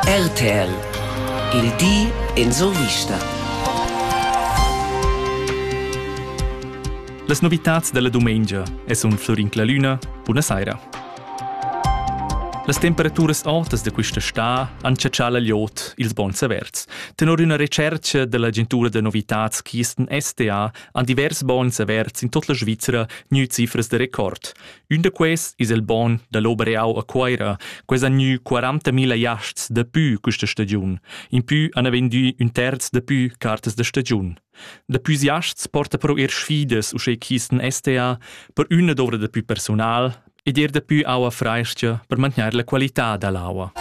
RTL Il di en survista. Las novitads della dumengia e sun Florin Clalüna. Buna saira. Las temperaturas autas de questa sta han caccià l'iot ils bons averts. Tenor una recerca dell'agentura de novitats Kisten STA han divers bons averts in tot la Svizzera gnü cifras de record. Ün da quests es il bogn da l'Obereau a Cuoira. Quels han gnü 40.000 jasts dapü quista stagiun. Impü han vendü ün terz dapü cartas da stagiun. Dapü jasts porta però eir sfidas uschè ch'isten STA per üna dovrà dapü persunal ed eir dapü aua frais-cha per mantgnair la qualità da l'aua.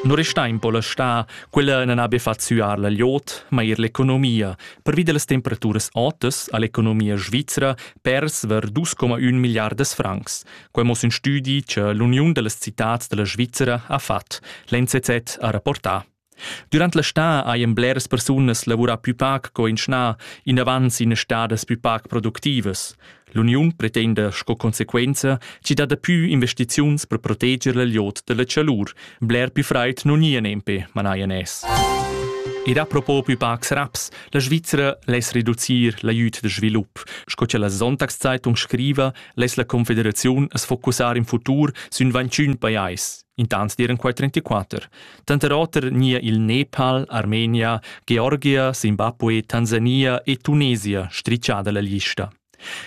Non resta in po la sta, quella non abbia fatto suar la liot, ma er l'economia, pervi delle temperature otas all'economia svizzera persver 2,1 milliardas francs. Quei mo sin studi che l'Uniun delle Citats della Svizzera ha fatg, l'NCZ ha rapportà. Durant la sta haien bleras persunas lavurà più pac co in schna, in avanz in stadas più pac productivas. L'uniun pretenda sco conseguenza, ci dat pü investiziuns per proteger la liot della chalur, Bler più fraid non ia nempe, manaia nes. Ed a propo più pacs raps, la Svizzera less reducir l'aiut de svilup, sco che la Sonntagszeitung scriva, less la Confederaziun es focussar in futur sün 21 pajais, intant diren quai 34. Tanter oter nia il Nepal, Armenia, Georgia, Zimbabwe, Tansania e Tunesia stricciada la lista.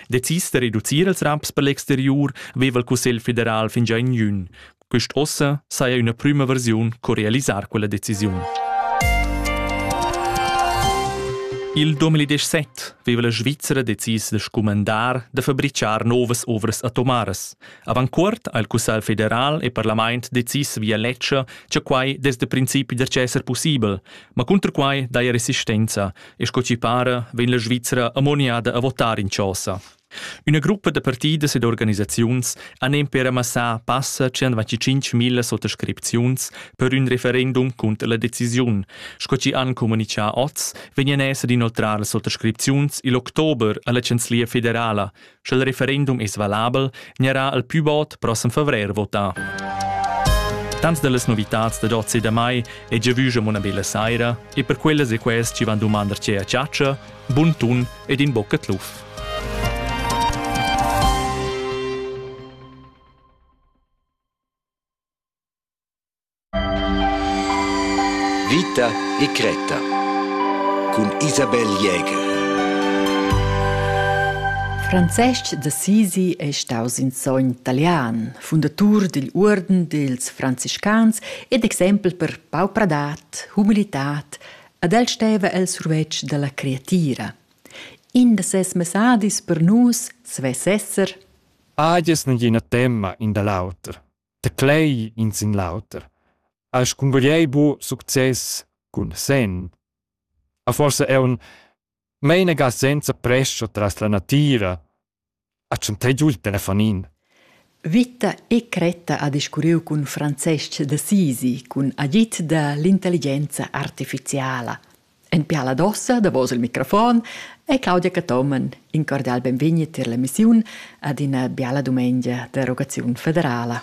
Decis da reducir ils raps per l'exteriur veva il Cussegl federal fingià in jün. Quist ossa saja üna prüma versiun co realisar quella decisiun. Il 2017 veva la Svizzera decis da scumandar da fabrichar novas ovras atomaras. Avant cuort ha il Cussegl federal e parlament decis via ledscha, che quai des da principi da esser possibel, ma cunter quai daja resistenza, E sco ci para, vegn la Svizra ammoniada a votar in chosa. Üna gruppa da partidas ed organisaziuns han emper amassà passa 125.000 sottoscripziuns per ün referendum cunter la decisiun. Sco ci han comunichà oz, vegnan esser d'inoltrar las sottoscripziuns il october alla Chanzlia federala, Sch'il referendum es valabel, gnarà il pü bod prossem favrer votà. Tants dellas novitats da Giozi da mai e giavüscham una bella saira e per quellas e quest ci van dumandar ce a ciaccia, bun tun ed in bocca tluf. Vita e cretta cun Isabel Jäger. Francesc d'Assisi è staus in sogn talian, fundatur digl Uorden dils franciscans ed exempel per paupradad, humilitad ed el steva el survetsch dalla creatira. In da ses messadis per nus svess esser Agies negina temma in da l'auter. Teclei in sin l'auter, has cungugliei buc success cun senn. A forsa aunc meinaga senza prescha tras la natira, ha tschantei giu il telefonin. Vita e cretta ha discurriu cun Francesc d'Assisi cun agid da l'intelligenza artificiala. En piala d'ossa, davos il microfon, è Claudia Cathomen in cordial benvegni tier la missiun ad ina biala dumengia d'erogaziun federala.